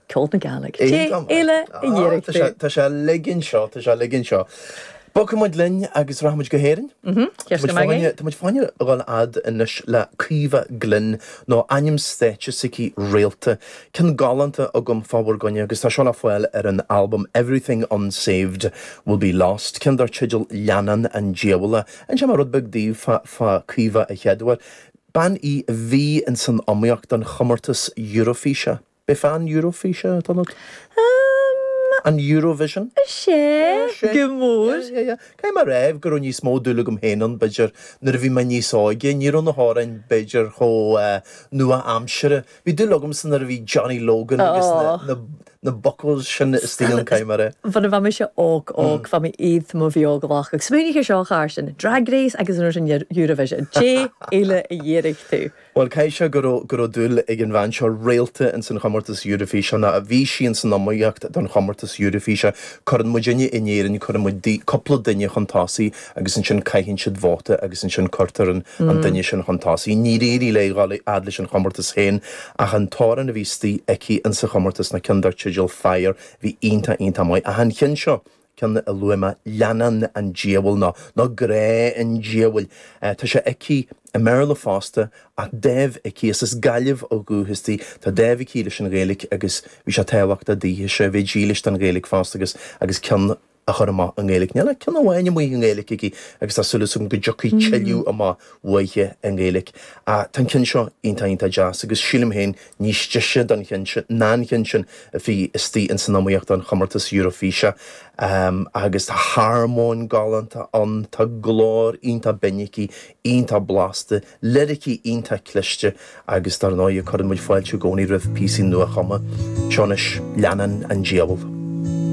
Ceol na Gealaigh. Cé eile a dhírigh tú? Tá sé a ligean seo, tá sé a ligean seo. Bogfaidh muid linn agus rachaidh muid go hÉirinn. Tá muid fáinne, tá muid fáinne a dhul fhad anois le Caoimhe Glynn, nó ainm stáitse atá aici Réalta. Ceann galánta agam fá bhur gcoinne agus tá seo le fáil ar an albam Everything Unsaved Will Be Lost, ceann dar teideal Leannán an Diabhail. Inseoidh mé rud beag daoibh fá Caoimhe a chéaduair. Bean í a bhí insan iomaíocht don chomórtas Eurofíse. Bf An Eurofíse, a Donald? Amm. An Eurovision? Is ea, go mór. Caithfidh mé a rá go raibh níos mó dúil agam féin ann, b'fhéidir, nuair a bhí mé níos óige. Ní raibh na hamhráin, b'fhéidir, chomh nua-aimseartha. Bhí dúil agamsa nuair a bhí Johnny Logan agus na. na buckles sin is tí an caidhm ar é. Bhunadh bheadh mise óg óg, bheadh mé iad mo bhí óg lách agus smaoinigh ar seo char sin, Drag Race agus an rud sin Eurovision, cé uile a dhírigh tú? Bhuel caithfidh sé go go raibh dúil ag an bhean seo Réalta ins an chomórtas Eurovision ná a bhí sí ins an iomaíocht don chomórtas Eurofíse. Cuireann muid inniu in Éirinn, cuireann muid cúpla duine chun tosaigh, agus ansin caitheann siad vóta agus ansin cuirtear an duine sin chun tosaigh. Níor éirigh léi dhul a fhad leis an chomórtas féin ach an t-amhrán a bhí istigh aici insa chomórtas ná ceann dar teideal Fire bhí iontach iontach maith ach an ceann seo, ceann a luaigh mé, Leannán an Diabhail nó nó Grá an Diabhail, tá sé aici i mBéarla fosta ach dáimh aici, is as Gaillimh ó dhúchas di, tá dáimh aici leis an Ghaeilge agus bhí sé tábhachtach daoithe seo a bheith dílis don Ghaeilge fosta agus agus ceann a chur amach i nGaeilge. Níl ach ceann amháin amuigh i nGaeilge aici agus tá súil agam go dtiocfaidh tuilleadh amach uaithi i nGaeilge. Ach tá an ceann seo iontach, iontach deas agus sílim féin níos deise ná an ceann sin a bhí istigh ins an iomaíocht don chomórtas Eurofíse. Agus tá armóin galánta ann, tá glór iontach binn aici, iontach blasta, liricí iontach cliste agus dár ndóighe cuireann muid fáilte i gcónaí roimh phíosaí nua-chumtha. Seo anois, Leannán an Diabhail.